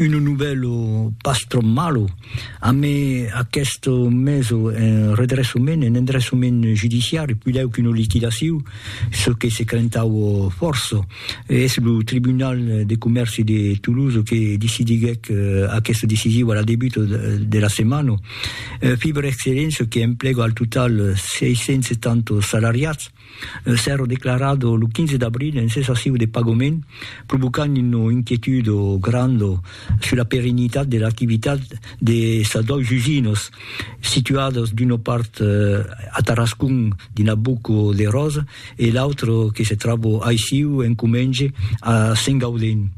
Uno novèlo pas tròp malo, amé aqueste meso en redressament, en endressament judiciari, pilèu qu'una liquidaciu, çò que se crentaue fòrça. Es lo Tribunal de Comèrci de Toulouse que decidiguèc aqueste decisiu a la debuta de la setmana. Fiber Excellence, qu'emplega al total 670 salariats, Un sèro declarat lo 15 d'abril en cessaciu de pagament, provocant una inquietud granda sus la perennitat de l'activitat de sas dois usinas, situadas d'una part a Tarascon dins la Boca de Rosa e l'autra que se tròba aissiu en comenge a Sengaudin,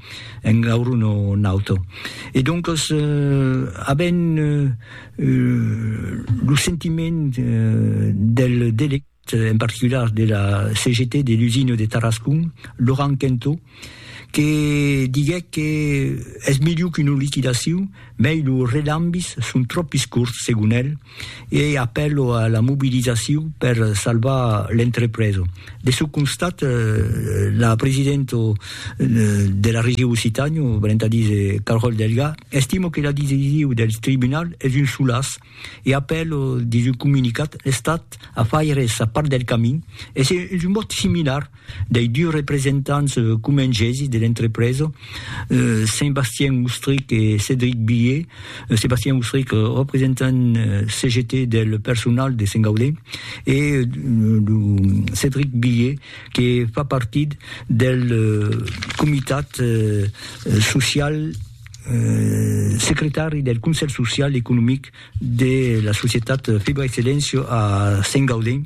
en Gaurona Nauta. E doncas avèm lo sentiment del delegat. en particular de la CGT de l'usina de Tarascon, Laurent Quentot, que diguèc que es melhor qu'una liquidacion, mei los relambis son trop iscurts, segon el, e ei apèlo a la mobilizacion per salvar l'entrepresa. De çò constat, la presidenta de la Region Occitània, valent a díser Carole Delga, estima que la decision del tribunal es un solàs, e apèl dins un comunicat l'Estat a faire sa part del camin, es un vòt similar dei dus representants comengèsi de l'entrepresa, Sébastien Oustric e Cédric Billé, Sébastien Oustric, representant CGT del personal de Saint-Gaudè, e lo Cédric Billé que fa partit del comitat social. secretari del Conselh Social e Economic de la societat Fibra Excellencio a Saint Gaudens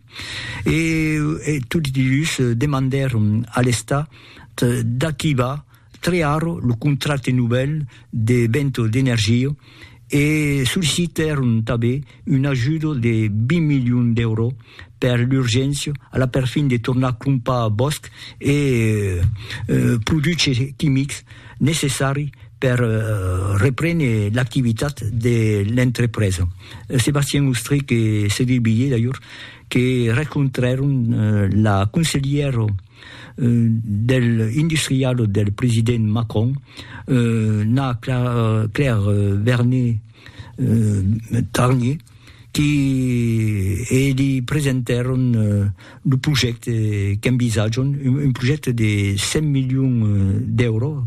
e tots dus demandèron a l'Estat d'activar trear lo contracte novèl de Vento d'Energia e sollicitèron tanben un ajudo de 20 milions d'èuro per l'urgéncia a la perfin de tornar crompar bòsc e produches quimics necessari per reprene l'activitat de l'entrepresa. Sébastien Ostrich e Cédric Billé d'ajor que rencontrèron la conselhièra del industrialo del president Macron, na Claire Vernet, Tarnier, qui li presentèron lo projècte qu'envisatjam, un projècte de 100 milions d'èuros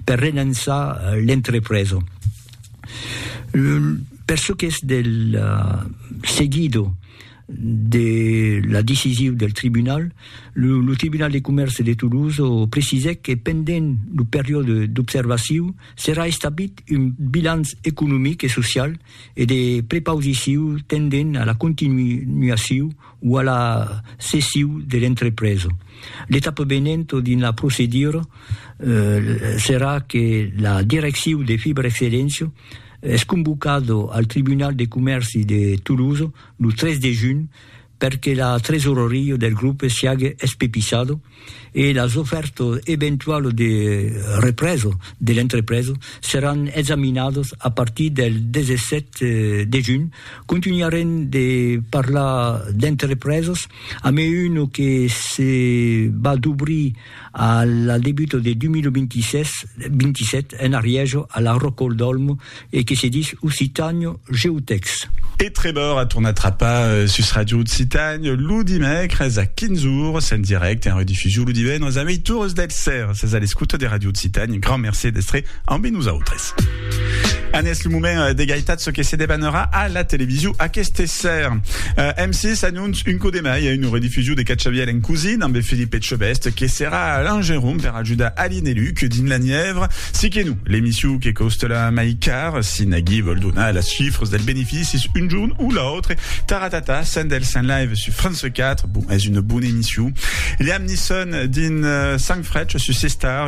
per relançar l'entrepresa. Per çò qu'es del seguido de la decisiu del tribunal, lo Tribunal de Comèrce de Toulouse precisèc que pendent lo periòde d'observaciu, Serà establit un bilanç economic e social e de prepausiciu tendent a la continuaciu o a la cessiu de l'entrepresa. L'etapa venenta dins la procedura serà que la direcciu de Fibra Excelléncia es convocada al Tribunal de Comèrci de Tolosa lo 3 de junh per que la tresoreria del grupe siague espepisado e las ofèrtas eventualas de represa de l'entrepresa seràn examinadas a partir del 17 de junh. Contunharem de parlar d'entrepresas, a mai una que se va d'obrir A la debuta de 2026-27 en Arièja a la Rocol d'Olmo e que se dis Occitània GeoText. E Trevor a tornat trapar sus Ràdio Occitània lo dimècres a 15 ores en dirècte, en redifusion lo divendres a meitures del sèra. Sètz a l'escota de Ràdio Occitània, grand mercé d'èstre ambe nosautres. An es lo moment euh, d'egaitat ce que se debanera a la television aqueste ser. Euh, M6 annonce un coup de mai a une rediffusion de Catxaviel en cousine amb Philippe Etchebest que serà l'engeron per ajudar Aline et Luc dins la Nièvre. Si que nous, l'émission que coste la mai car, si Nagui vol donar les chiffres del bénéfice un jour ou l'autre, Taratata, Sendel Saint Live sur France 4, bon, est une bonne émission. Liam Nisson dins euh, Sang Fretch sur C-Star,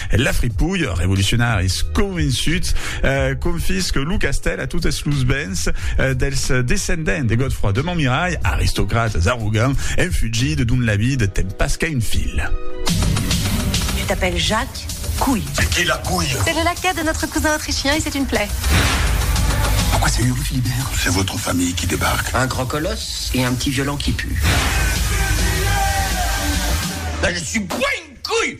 La fripouille, revolucionaris convençuts, confisque lo castèl a totes los bens dels descendents de Godefroi de Montmirai, aristocrates arrogants, en fugida dont la vida ten pas qu'a un fil. Tu t'appelles Jacques Couille. C'est qui la couille C'est le laquais de notre cousin autrichien et c'est une plaie. Pourquoi c'est une rue Philibert C'est votre famille qui débarque. Un grand colosse et un petit violent qui pue. Là, je suis pas une couille